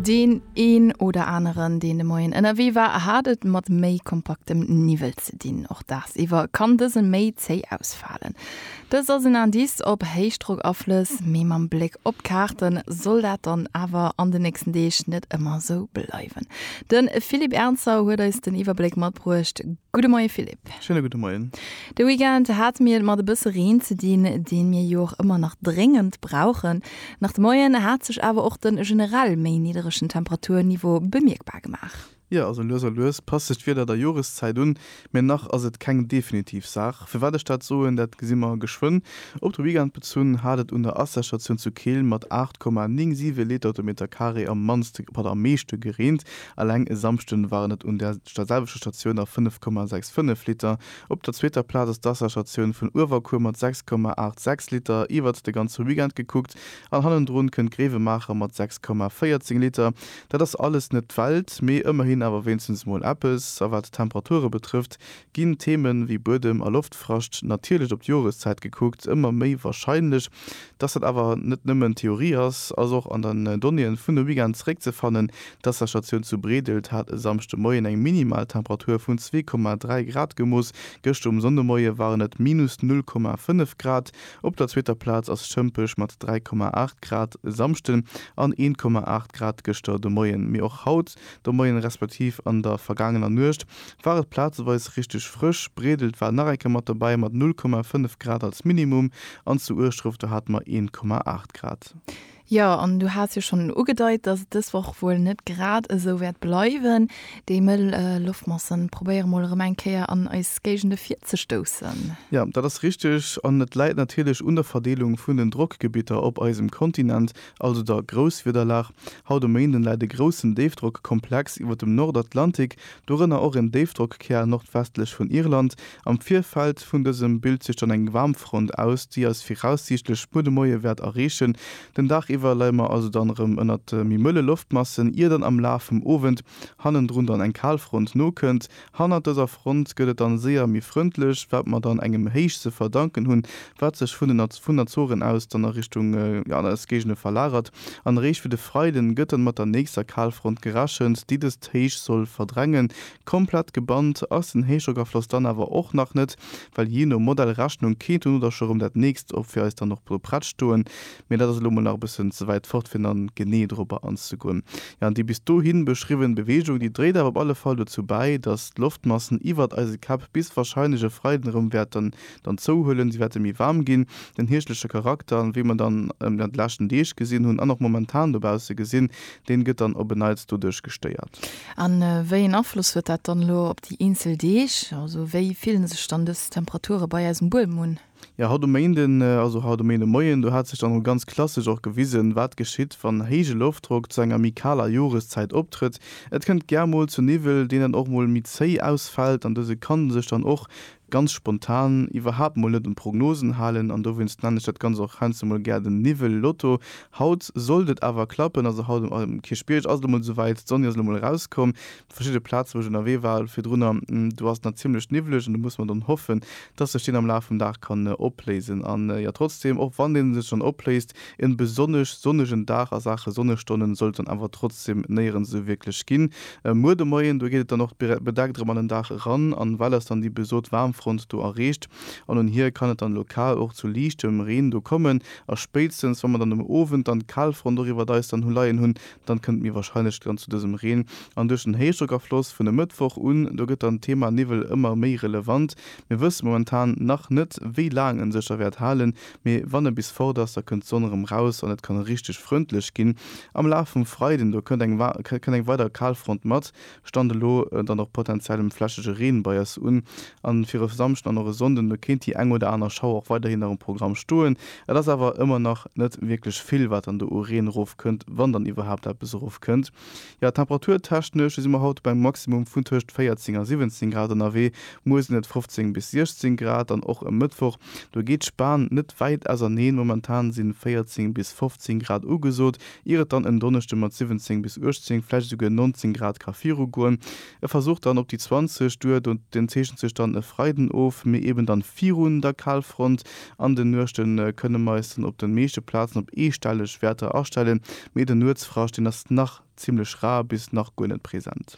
Deen een oder aneren, deen de Moien ënnerwee war, hat et mat méi kompaktem Niwwel ze dinn. Och dagsiwwer kann dëse méi zéi ausfalen. Dëst ass en Indice op Héichdrockaflëss, mee mam Bléck op d'Kaarte soll dat dann awer an de nächsten Deeg net ëmmer esou bleiwen. De Philippe Ernzer huet eis den Iwwerbléck matbruecht. Gudde Moie Philippe. Schéine gudde Moien. De Weekend hate mir et mat e bësse Reen ze dinn, dee mir jo och ëmmer nach dréngend brauchen. Nach de Moien hat sech awer och de generell méi nidderegen Temperaturniveau bemierkbar gemaach. Jo, also lues a lues passt sech d'Wieder der Joreszäit un, mee nach ass et keng definitiv Saach. Firwat ech dat soen, dat gesi mer geschwënn. Op de Weekend bezunn hat et un der Asserstatioun zu Keel mat 8,97 Liter op de Metercarré am mannste, op am meeschte gereent. Eleng e Samschden waren et un där selwechter Statioun nach 5,65 Liter. Op der zweeter Plaz ass d'Wasserstatioun vun Uewerkuer mat 6,86 Liter iwwert de ganze Weekend gekuckt an hannendrun kënnt Gréiwemaacher mat 6,14 Liter. Dat ass alles net d'Welt, mee ëmmerhin awer wéinstens mol eppes. A wat d'Temperature betrëfft, ginn Themen ewéi Buedem a Loftfrascht, natierlech op d'Joreszäit gekuckt, ëmmer méi warscheinlech. Dass dat awer net nëmmen Theorie ass, ass och an den Donnéeën vun de Weekend zeréckzefannen. D'Wasserstatioun zu Breedelt hat e Samschde Moien eng Minimaltemperatur vun zwee Komma dräi Grad gemooss. Gëschter um Sonndemoie waren et minus null Komma fënnef Grad. Op der zweeter Plaz ass Schëmpech mat dräi Komma aacht Grad e Samschden an een Komma aacht Grad gëschter de Moien. Mee och haut De Moien respektiv an der vergaangener Nuecht war et plazeweis richteg frësch, Bredelt war nach eng Kéier mat dobäi mat 0,5 Grad als Minimum an zu Ueschdref do hate mer 1,8 Grad. Jo, an du has jo schonn ugedeit, dass et dës Woch wuel net grad esou wäert bleiwen. Déi mëll Loftmasse probéiere mol erëm eng Kéier an eis Géigende virzestoussen. Jo, dat ass richteg an et läit natierlech un der Verdeelung vun den Drockgebitter op eisem Kontinent, also der Grousswiederlag. Haut e Méinden läit e groussen Déifdrockkomplex iwwer dem Nordatlantik, dorënner och en Déifdrockkär nordwestlech vun Irland. Am Virfeld vun dësem bilt sech dann eng Waarmfront aus, déi eis viraussiichtlech muer de Moie wäert erreechen. Den Dag iwwer leie mer also dann erëm ënnert méi mëlle Loftmassen, ier dann am Laf vum Owend hannendrun dann eng Kalfront nokënnt, Hannert dëser Front gëtt et dann séier méi frëndlech, wat mer dann engem Héich ze verdanken hunn, wat sech vun den vun Azoren aus dann a Richtung an eis Géigende verlagert. An eréischt fir de Freiden gëtt dann mat der nächster Kalfront gerechent, déi dëst Héich soll verdrängen. Komplett gebannt ass den Héichdrockafloss dann awer och nach net, well jee no Modellrechnung kéint dono da scho rëm dat nächst op fir eis dann och do prett stoen, Mee dat ass elo mol nach e bëssen ze wäit fort, fir dann genee dorobber anzegoen. Jo, an déi bis dohin beschriwwen Beweegung, déi dréit awer op alle Fall dozou bäi, dass d'Loftmassen iwwert eise Käpp bis warscheinlech e Freiden erëm wäerten dann zouhuelen. Si wäerte méi waarm ginn. Den hierschtleche Charakter, wéi mer dann déi leschten Deeg gesinn hunn an och momentan dobausse gesinn, deen gëtt dann op e Neits doduerch gestéiert. A wéi een Afloss huet dat dann elo op déi eenzel Deeg? Also wéi fillen sech dann dës Temperature bei eisem Buedem un? Jo, haut um Méinden, also haut um Méindemoien, do hat sech dann emol ganz klassesch och gewisen, wat geschitt, wann héije Loftdrock zu enger méi kaler Joreszäit optrëtt. Et kënnt gär mol zu Niwwel, deen dann och mol méi zéi ausfält an dëse kann sech dann och ganz spontan iwwerhaapt mol net un d'Prognosen halen an dowéinst nennen ech dat Ganzt och heiansdo mol gär den Niwwel-Lotto. Haut sollt et awer klappen, also haut um Kierchbierg ass et emol esouwäit, d'Sonn ass elo mol erauskomm, Verschidde Plazen, wou ech ënnerwee war virdrunner, do ass et nach zimmlech niwwlech an do musse mer dann hoffen, dass sech deen am Laf vum Dag kann opléisen. An jo, trotzdeem, och wann dee sech dann opléist, en besonnesch sonnegen Dag a Saache Sonnestonnen sollt et dann awer trotzdeem néierens esou wierklech ginn. Muer de Moien, do geet et dann och bedeckt erëm an den Dag eran an well ass dann déi besot Waarmfront do erreecht an un hir kann et dann lokal och zu liichtem Reen do kommen a spéitstens wa mer dann um Owend dann d'Kalfront och iwwert eis dann hu leien hunn, Dann kënnt mir wahrscheinlech dann zu dësem Reen. An duerch den Héichdrockafloss vun e Mëttwoch un, do gëtt dann d'Thema Niwwel ëmmer méi relevant. Mir wësse momentan nach net, wéi laang en sech da wäert halen, mee wann e bis fort ass, da kënnt d'Sonn erëm raus an et kann richteg frëndlech ginn. Am Laf vum Freiden, do kënnt eng kënnt eng weider Kalfront mat, Stand elo dann och potentiellem flächege Reen bei eis un. A fir e Samschden an och e Sonnden, do kéint déi eng oder aner Schauer och weiderhin nach um Programm stoen. Et ass awer ëmmer nach net wierklech vill, wat dann do u Reen erofkënnt, wann dann iwwerhaapt eppes erofkënnt. Jo, temperaturtechnesch si mer haut op engem Maximum vun tëscht 14 a 17 Grad ënnerwee. Muer sinn et 15 bis 16 Grad an och e Mëttwoch, do geet d'Span net wäit auserneen. Momentan si 14 bis 15 Grad ugesot. ier et dann en Donneschde mat 17 bis 18, vläicht esouguer 19 Grad ka virugoen. E Versuch dann op déi 20, duer do den zeechent sech dann e Freiden of, mee eben dann virun der Kalfront. An de Nuechte kënne mer eis dann op de meeschte Plazen op eestelleg Wäerter astellen, mee den Nuetsfrascht, deen ass nach zimmlech rar bis nach guer net present.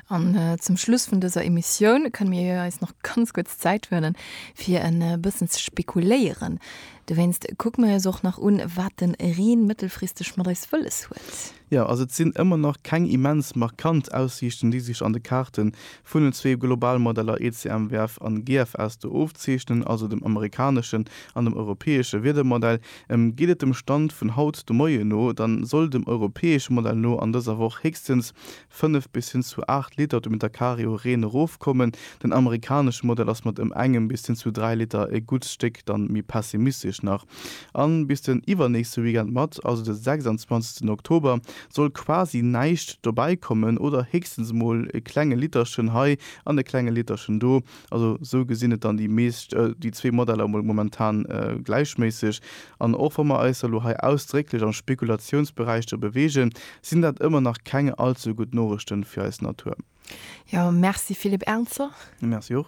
An zum Schluss vun dëser Emissioun kënne mir eis nach ganz kuerz Zäit huelen, fir e bëssen ze spekuléieren. Dowéinst kucke mir eis och nach un, wat de Reen mëttelfristeg mat eis wëlles huet. Jo, also et sinn ëmmer nach keng immens markant Aussiichten, déi sech an de Kaarte vun den zwee Globalmodeller ECMWF an GFS do ofzeechnen, also dem amerikaneschen an dem europäesche Wiedermodell. Geet et dem Stand vun haut de Moien no, da soll dem europäesche Modell no an dëser Woch héchstens 5 bis hin zu 8 Liter de Meter Carré u Reen erofkommen. Den amerikanesche Modell ass mat ëm engem bis hin zu 3 Liter e gutt Stéck dann méi pessimistesch nach. A bis den iwwernächste Weekend mat, also de 26 Oktober, soll quasi näischt dobäikommen oder héchstens mol e klenge Literchen hei an e klenge Literchen do. Also esou gesinn et dann déi meescht, déi zwee Modeller emol momentan gläichméisseg. An och wa mer eis elo hei ausdrécklech am Spekulatiounsberäich do beweegen, sinn dat ëmmer nach keng all ze gutt Noriichten fir eis Natur. Jo, merci Philippe Ernzer. Merci och.